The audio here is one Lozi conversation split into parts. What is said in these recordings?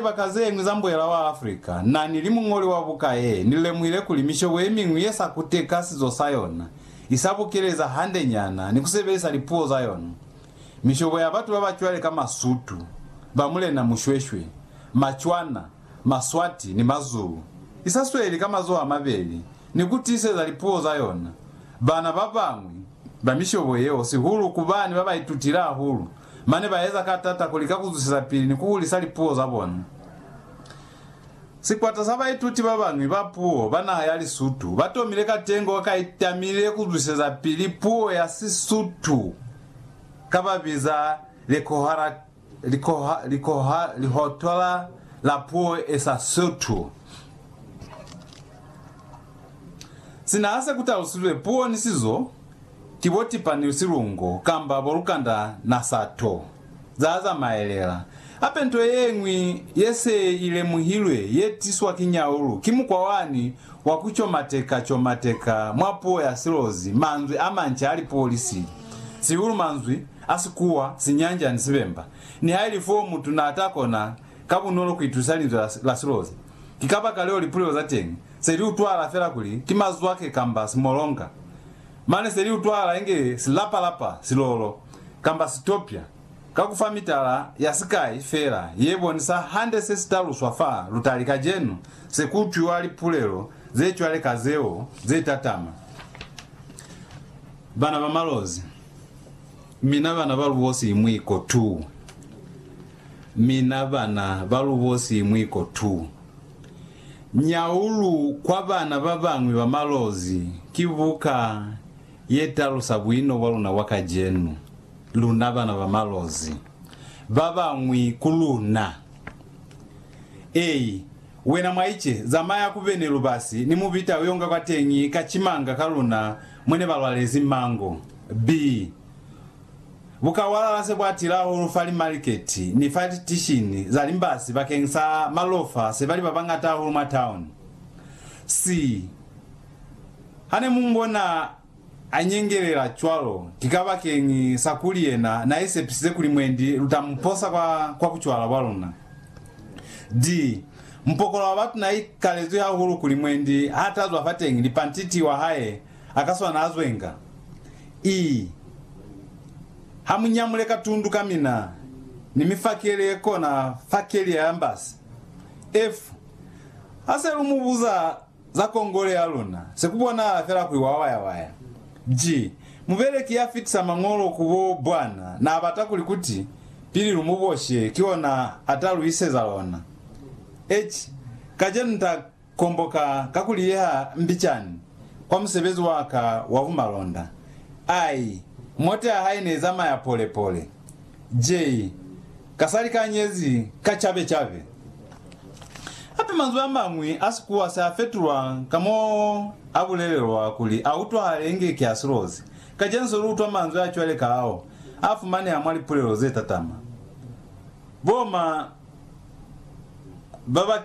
libaka zeñwi za mbwela wa Africa, na ni li muñoli wa buka ye, ni lemuhile kuli mishobo ye miñwi ye sa kuteka sizo sa yona, i sa bukeleza hande nyana ni ku sebelisa lipuo za yona. Mishobo ya batu ba ba cwale ka Masutu, ba Mulena Mushweshwe, Macwana, Maswati ni Mazulu, i sa sweli ka mazoho a mabeli ni ku tiiseza lipuo za yona. Bana ba bañwi ba mishobo yeo, sihulu ku bani ba ba itutile hahulu, Mane ba eza ka tata ku lika ku zwisiza pili ni ku hulisa lipuo za bona. Sikwata sa baituti ba bañwi ba puo ba naha ya Lisutu ba tomile katengo ka i tamile ku zwiseza pili puo ya Sisutu ka ba biza Likhohothola la Puo e sa Sotho. Sina ha se ku talusizwe puo ni sizo, Ki bo tipa ni silungo kamba bo lukanda na sato za zamaelela. Hape nto ye ñwi ye se i lemuhilwe ye tiswa ki nyaulu ki mukwa wani wa ku comateka-comateka mwa puo ya silozi manzwi a manca a lipolisi, sihulu manzwi a Sikuwa, Sinyanja ni Sibemba, nihailif'o mutu n'a ta kona ka bunolo ku itusa linzwi la silozi. Ki kabakaleo lipulelo za teñi se li utwahala fela kuli ki mazwake kamba simolonga. Mane se li utwahala inge silapa-lapa, silolo, kamba sitopya, ka ku fa mitala ya sikai fela ye bonisa hande se si taluswa fa lutali kacenu, se ku utwiwa lipulelo ze cwale ka zeo ze tatama. Bana ba malozi. Mina bana ba lubosi mwiko tuu Mina bana ba lubosi mwiko tuu Nyaulu kwa bana ba bañwi ba malozi ki buka ye talusa buino bwa luna bwa kacenu, luna bana ba malozi, ba bañwi ku luna. Ei, wena mwaice, zamaya ku bene lubasi ni mubita uyonga kwateñi ka cimanga ka luna Mwe ne ba lwalezi mango. B. Bukawalala se bwa tila hahulu fa limaliketi ni fa tishini za limbasi bakeng sa malofa se ba li ba bañata hahulu mwa tauni. C. Ha ne mu mbona a nyengelela cwalo, ki kabakeng sa kuli yena n'a isepisize kuli mwendi lu ta mu posa kwa bucwala bwa luna. D. Mupokolo wa batu na ikalezwi hahulu kuli mwendi ha tazwa fateñi lipantiti wa hae akaswana azwenga. Ii, Ha mu nyamule ka tundu ka mina ni mi fakele ye kona fa kelia ya mbasi. F, Ha se lu mu buza Za kongole ya luna, se ku bonahala fela kuli wa wayawaya. G. Mubeleki ya fitisa mañolo ku bo bwana na bata kuli kuti pili lu mu boshe ki ona a ta lu iseza lona. H. Kacenu nta komboka ka ku liyeha mbicani kwa musebezi wa ka wa bumalonda. I. Mote ya hae ne zamaya pole pole. J. Ka sa likanyezi ka cabe-cabe. Hape manzwi a mañwi a Sikuwa se a fetulwa ka mo a bulelelwa kuli a utwahale inge ki a silozi. Kacenu lu utwa manzwi a cwale ka ao a fumaneha mwa lipulelo ze tatama. Bo ma ba ba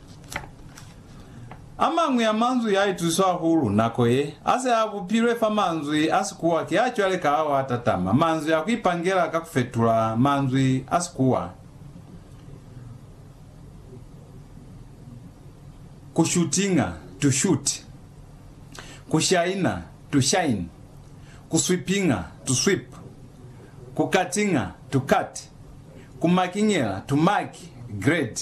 A mañwi a manzwi a ituswa hahulu nako ye, a se a bupilwe fa manzwi a Sikuwa ki a cwale ka ao a tatama manzwi a ku ipangela ka ku fetula manzwi a Sikuwa ku shutinga, to shoot, ku shaina, to shine, ku swipinga, to sweep, ku katinga, to cut, ku makingela, to mark, grade.